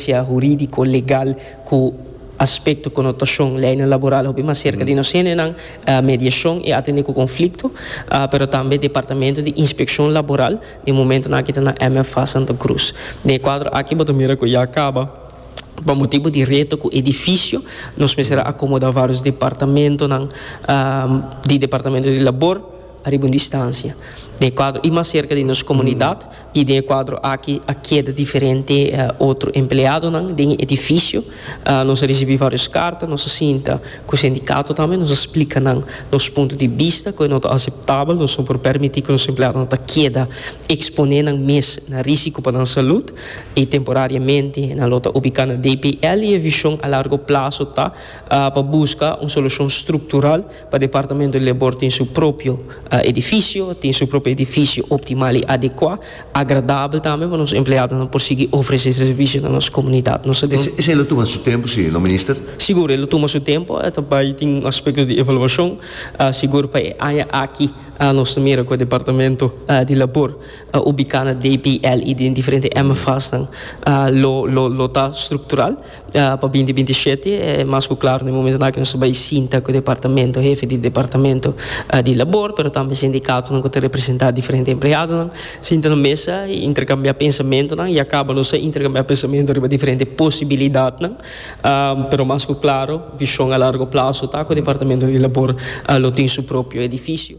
Asistencia huridico legal cu aspecto connotacion leynan laboral hopi mas cerca di nos hendenan, mediacion y atende cu conflicto, pero tambe departamento di inspeccion laboral den momentonan aki ta na MFA Santa Cruz. Den e cuadro aki bo ta mira cu ya caba pa motibo di reto cu edificio nos mester a acomoda varios departamentonan di departamento di labor ariba un distancia den e cuadro y mas cerca di nos comunidad. I den e kuadro aki a keda diferente otro empleadonan den e edifisio. Nos a risibí vários karta, nos a sinta ku sindikato tambe, nos a splika nan nos punto di bista, ku e no ta aseptabel, nos no por permití ku nos empleadonan ta keda eksponé nan mes na rísiko pa nan salùt, i temporariamente nan lo ta ubiká na DPL, i e vishon a largo plaso ta pa buska un solushon struktural. Pa departamento lebor tin su propio edifisio, tin su propio edifisio optimal i adekuá, agradabel tambe pa nos empleadonan por sigui ofresé servisio na nos komunidat. Nos ta den. Esei lo tuma su tempu si no Minister? Sigur, e lo tuma su tempu. E ta bai tin un aspekto di evaluashon. Sigur pa e aña aki nos ta mira ku e departamento di labor ubiká na DPL i den diferente MFASnan lo ta struktural. Pa binti binti i shete e mas ku klaru na e momentu nan ku nos ta bai sinta ku departamento, hefe di departamento di labor pero tambe sindikatonan ku ta representá diferente empleadonan sinta na mesa i interkambiá pensamentunan i a kaba nos a interkambiá pensamentu riba diferente posibilidatnan pero mas ku klaru vishon a largo plaso ta ku departamento di labor lo tin su propio edifisio.